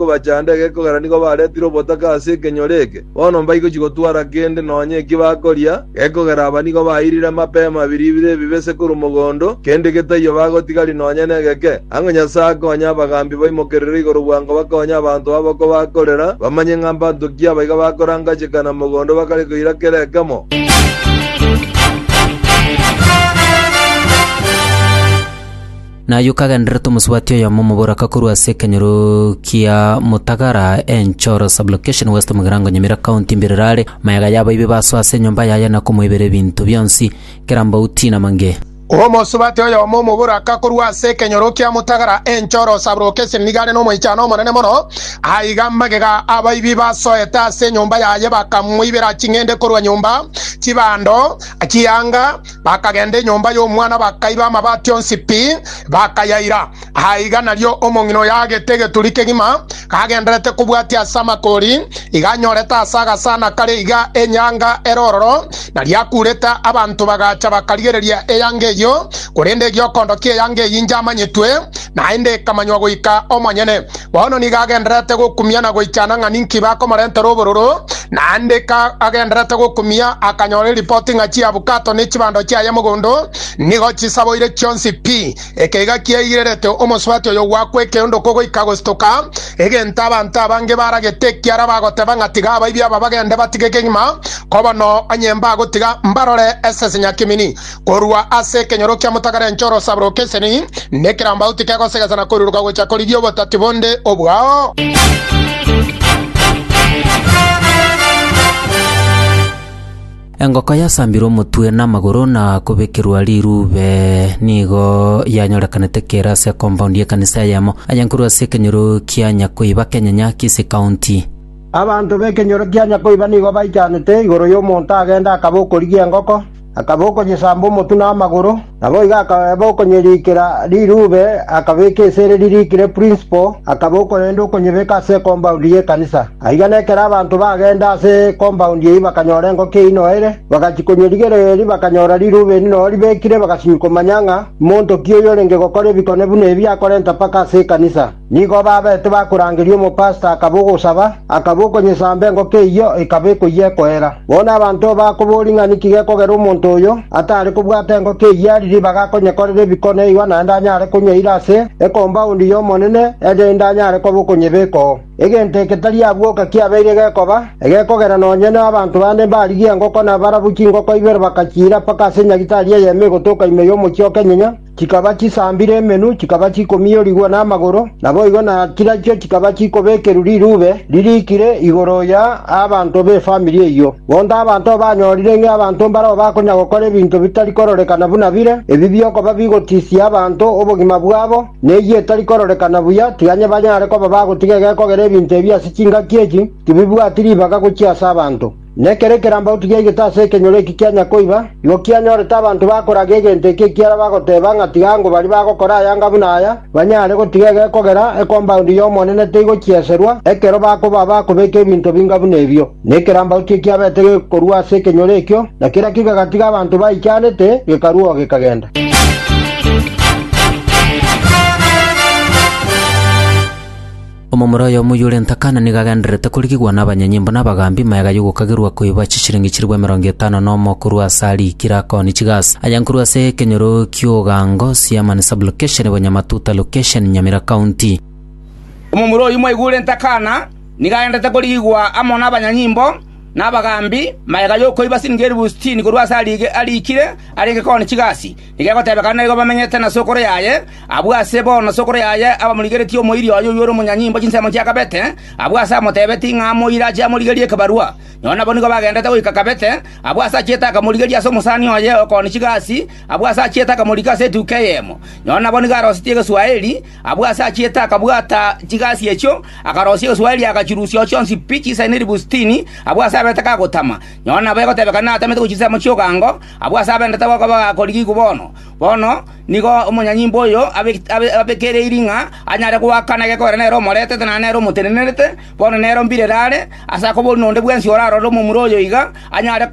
kobachanda egekogera nigo baretire obotaka ase ekenyoro eke, bono mbaigochi gotwara kende nonya eki bakoria, gekogera aba nigo bairire mapema biribiro ebibe se korwa mogondo, kende getaiyo bagotigari nonya negeke. Ang'o Nyasae akonye abagambi baimokerere igoro bwango bakonye abanto aboko bakorera, bamanye ng'a mbanto ki abaiga bakorangachekana mogondo bakare koira kera ekemo. Naye okagenderera omosubati oyomo omoboraka korwa ase ekenyoro kia Mutagara, Enchoro Sub-location, West Mugirango, Nyamira County, mbirero are. Maega yabo ibe baso ase enyomba yaye na komoibera ebinto bionsi, kera mbauti na mange. Omosubati oyomo omoboraka korwa ase ekenyoro kia Mutagara, Enchoro Sub-location, nigo are nomoichano omonene mono. Aiga magega abaibi basoete ase enyomba yaye bakamoibera ching'ende korwa nyomba, chibando, chianga, Bakagenda enyomba y'omwana bakaiba amabati onsi pi, bakayaira. Aiga nario omong'ina oyo agete egeturi kegima, kagenderete kobwatia ase amakori, iga anyorete ase agasana kare iga enyanga ere ororo, na riakurete. Abanto bagacha bakarigereria eyanga eyio, korende egiokondo ki'eyanga eyio injamanyetwe, naende ekamanywa goika omonyene. Bono nigo agendererete gokumia na goichana ng'a ninki bakomorentera obororo, naende ka agendererete gokumia akanyora eripoti ng'a chiabukato ne chibando chiaye mogondo nigo chisaboire chionsi pi. Eke iga kiaigirerete omosubati oyo gwakwa ekeondoko goika gostoka, egento abanto abange baragete ekiara bagoteba ng'a tiga abaibi aba bagende batige kegima, koba noo onye mbagotiga mbarore esese nyakimini. Korwa ase ekenyoro kia motagara enche orosaba rokeseni, na ekerambagu tikegosegesa na koiruruka gocha korigia obotati bonde obwao. Engoko yasambirwe omotwe na amagoro na kobekerwa rirube nigo yanyorekanete kere ase compound y'ekanisa eyemo ayankorwa ase ekenyoro kia Nyakoiba Kenyanya, Kisii County. Abanto b'ekenyoro kia Nyakoiba nigo baichanete igoro y'omonto agende akaba okorigia engoko. Akaba okonyesamba omotwe na amagoro, naboigo akaba okonyerikera rirube, akabeka esere ririkire principal, akaba okorenda okonyebeka ase ekombaund y'ekanisa. Aiga nekero abanto bagenda ase ekombaund eyio bakanyora engoko eyio noere, bagachia konyerigereria erio bakanyora rirube eri noo ribekire, bagasinywa komanya ng'a monto ki oyorenge gokora ebikone buna ebi akorenta mpaka ase ekanisa. Nigo babeete bakorangeria omopasita akaba ogosaba, akaba okonyesamba engoko eyio ekaba ekoyia ekoera. Bono abanto bakoboria ng'a ninki gekogera omonto oyo atare kobwata engoko eyio ari ribaga akonyekorera ebikono erio naende anyare konywa ira ase ekombaundi y'Omonene erinde anyare koba okonyebekoo. Egento eke tari abwoka kiabeire gekoba, egekogera nonye nabanto bande mbarigia engoko na barabwo chingoko ibere bakachiira mpaka ase nyagitari eyemo egotoka ime y'omochie o Kenyenya, Chikaba chisambire emenwa, chikaba chikomiorigwa namagoro, naboigo na chirachio chikaba chikobekerwa rirube ririkire igoro ya abanto b'efamiri eyio. Bondo abanto banyorire ng'a abanto mbarao bakonya gokora ebinto bitari kororekana buna bire, ebi biokoba bigotisia abanto obogima bwabo, na eyio etari kororekana buya, tiga onye banyare koba bagotiga egekogera ebinto ebi ase chingaki echi, tibibwati ribaga gochia ase abanto. Nekero ekerambau tigiaigete ase ekenyoro eki kia Nyakoiba, igo kianyorete abanto bakoraga egento eki ekiara bagoteba ng'a tiga ango baria bagokora ayanga buna aya banyare gotiga egekogera ekombaundi y'Omonene teigokieserwa ekero bakoba abakobeka ebinto binga buna ebio. Na ekerambau tikiabete gekorua ase ekenyoro ekio, na kera kegatiga abanto baichanete gekarua oo gekagenda. Omomura oyomo oyio ore ntakana nigo agendererete korigigwa nabanyanyimbo na abagambi magega y'ogokagerwa koiba chishilingi chilifu emerongo etano nomo korwa ase arikire akoni chigas aya nkorwa ase ekenyoro ki'ogango Siamani Sub-location Bonyamatuta Location Nyamira County. Omomura oyio mwaigwa ore ntakana nigo agendererete korigigwa amo nabanyanyimbo na abagambi magega y'okoiba silingi elifu sitini korwa ase arikire are gekoni chigasi Nigo egotebekana naigo bamenyete na sokoro yaye, abwo ase bono sokoro yaye abamorigeretie omoiri oye oyio ore omonyanyimbo chinsemo chia Kabete, abwo ase amotebetie ng'a amoire ache amorigerie ekebarua. Nao nabo nigo bagendete goika Kabete, abwo ase achiete akamorigeria ase omosani oye okooni chigasi, abwo ase achiete akamorika ase etuko eyemo. Nao nabo nigo arosetie Egeswaeri, abwo ase achiete akabwata chigasi echio, akarosia Egeswaeri agachirusia chionsi pi chisaine ribu sitini, abwo ase abete kagotama. Nao nabo egotebekana natamete gochia chinsemo chi'ogango, Abwo ase abendete goka bagakorigiigwe bono. Bono nigo omonyanyimbo oyo abekereirie ng'a anyare goakana egekogera nere omoretete na nere omotenenerete, bono nere o mbirere are, ase akobori nonde bwensi orarore omomura oyo iga, anyare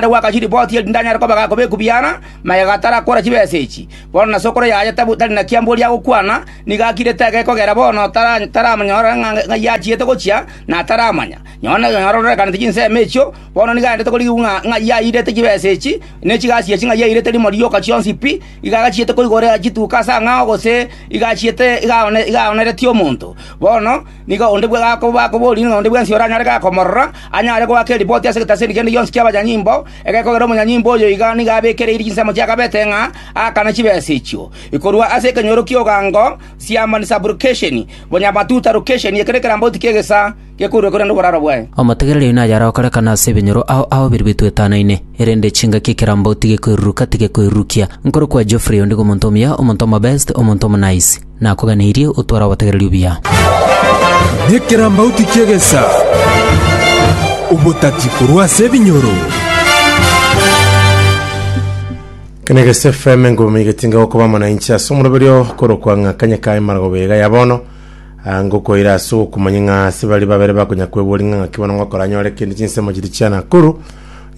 goaka chiripoti erinde anyare koba gakoba ekubi ara, magega atarakora chibesa echi. Bono nase okora yaye tari na kiamboria agokwana, nigo akirete egekogera bono taramonyora ng'ai achiete gochia, na taramanya. Nonye nororekaneti chinsemo echio, Bono nigo aendete korigigwa ng'a ng'ai airete chibesa echi, ne chigasi echi ng'ai airete rimo rioka chionsi pi, iga agachiete koigora chituko ase ang'ao gose iga achiete iga aoneretie omonto. Bono nigo onde bwe bakoborie ng'a onde bwensi oranyare iga komorora, anyare goaka eripoti ase egetaseri kende gionsi ki'abanyanyimbo, egekogera omonyanyimbo oyo iga nigo abekereiri chinsemo chiakabete ng'a aakane chibesa echio. Korwa ase ekenyoro ki'ogango, siamani, sublocation, bonyamatuta, location, ekero ekerambauti ki'egesaa. gekoirwe korende oboraro bwaye. Omotegereria oino ayare okorekana ase ebinyoro ao ao biria bitoetanaine, erende chingaki ekerambo tigekoiruruka, tigekoirurukia. Nkore kwa Geoffrey, ondigo omonto omuya, omonto omobest, omonto omonice. Nakoganeirie otware obotegereria obuya. Nekerambauti ki'egesa, obotati korwa ase ebinyoro. Kene gese FM engomi getinga gokoba amo na inche ase omoroberio korokwa ng'a kanye kaye maragoba iga ya bono. Aa ngokoira ase okomanya ng'a ase baria babere bakonya kweboria ng'a ng'aki bono ngokora nyore kende chinsemo chiria chia Nakuru.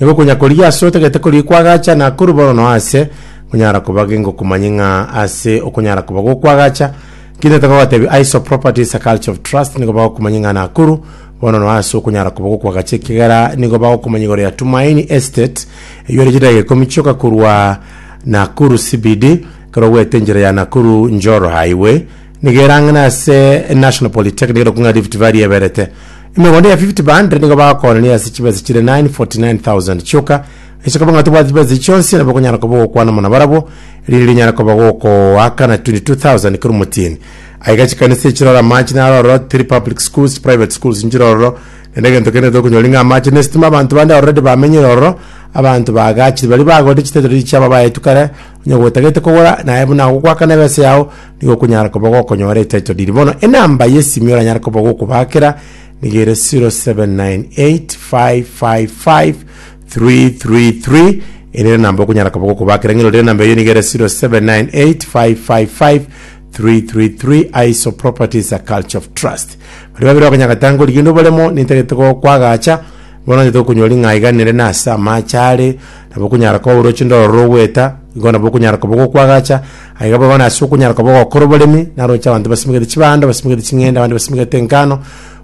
Nigo okonya korigia ase otagete korigia kwagacha Nakuru bono no ase nkonyara koba ge ngokomanye ng'a ase okonyara koba gokwagacha kinde toka gotebi ISO Properties a Culture of Trust nigo bagokomanya ng'a Nakuru bono no ase okonyara koba gokwagacha ekigera nigo bagokomanya igoro ya Tumaini Estate eywo ere chidageka ikomi chioka korwa Nakuru CBD ekero ogwete enchera ya Nakuru Njoro Highway Nigo erang'ana ase National Polytechnic ere kung'a Rift Valley eberete. Emegondo ya 50 by 100 nigo bagokoorania ase chibesa chire 949,000 chioka. Ase koba ng'a tobwati chibesa echi chionsi, nabo okonyara koba ogokwana amo nabarabwo, erinde rinyare koba gokoakana 22,000 kera omotienyi. Aye iga chikanisa echire ore amache naro ororo, tiri public schools, private schools nchire ororo, naende egento kende tokonyori ng'a amache na estima abanto bande already bamenyire ororo, abanto baagachire baria bagorete chitittle chia babayetu kare, onye gotagete kogora naye buna agokoakana ebesa yao, nigo okonyara koba gokonyora etitle deed. Bono enamba y'esimi oranyare koba gokobaakera nigo ere 0798555333 ere ere namba okonyara koba gokobaakera ng'erorire enamba eyio nigo ere 0798555333 Aiso Properties a Culture of Trust. Baria babere bakonyagete ango rigende obaremo nintagete gokwagacha bono onyete gokonyora ring'ai iga nere nase amache are nabo okonyara koba oroche ndororo goeta igo nabo okonyara koba gokwagacha Aiga boigo nase okonyaroka bobe gokora oboremi, naroche abanto basimegete chibando, basimegete ching'ende, abande basimegete engano,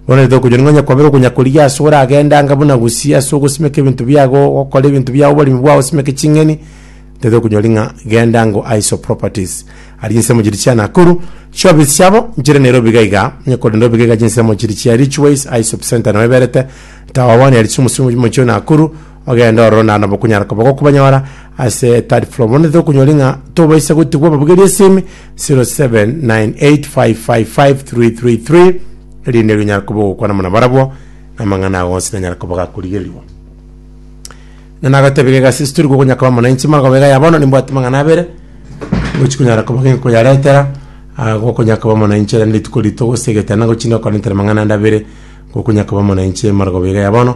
bono rete okonyora ning'o onyakwabera okonyakorigia ase oragende anga buna gusii ase ogosimeka ebinto biago, ogokora ebinto biago oboremi bwao osimeke ching'eni, tete okonyori ng'a genda ango aiso properties. Aria chinsemo chiria chia Nakuru, chiofisi chiabo nchire Nairobi iga iga, onye korende obiga iga chinsemo chiria chia Ridgways aiso center nao eberete, tawa bono aria chiomosingo mochio Nakuru, Ogendo ororo naende bokonyara koba gokobanyora ase Third Floor. Bono titokonyori ng'a tobaisa gotigwa babugerie esimi 0798555333 erinde rinyare koba ogokwana buna barabwo na amang'ana ago onsi nanyare koba gakorigerigwa. Ng'a nagotebiga egasi ase tori gokonya koba mwananchi mara koba iga ya bono nimbwate amang'ana abere ngochi konyara koba nkoyaretera ah, gokonya koba mwananchi ere rituko rito gose egetanda ngochi nokora intera amang'ana ande abere gokonya koba mwananchi mara koba iga ya bono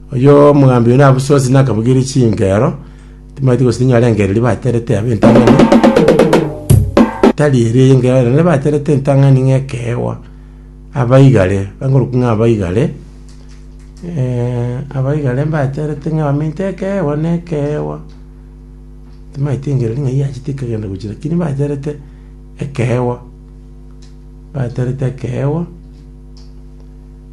Oyio omogambi oino abusuasire na akabogeria chinkero, timanyeti gose ninyore engero eria baterete yabe entang'ani, tari eria y'engero ere ne baterete entang'ani ng'a ekeegwa. Aba igare, bangorokwa ng'a aba igare, eh, aba igare mbaterete ng'a bamenyete ekeegwa na ekeegwa, timanyeti engero eria ng'a yachete ekagenda gochia lakini baterete ekeegwa, baterete ekeegwa.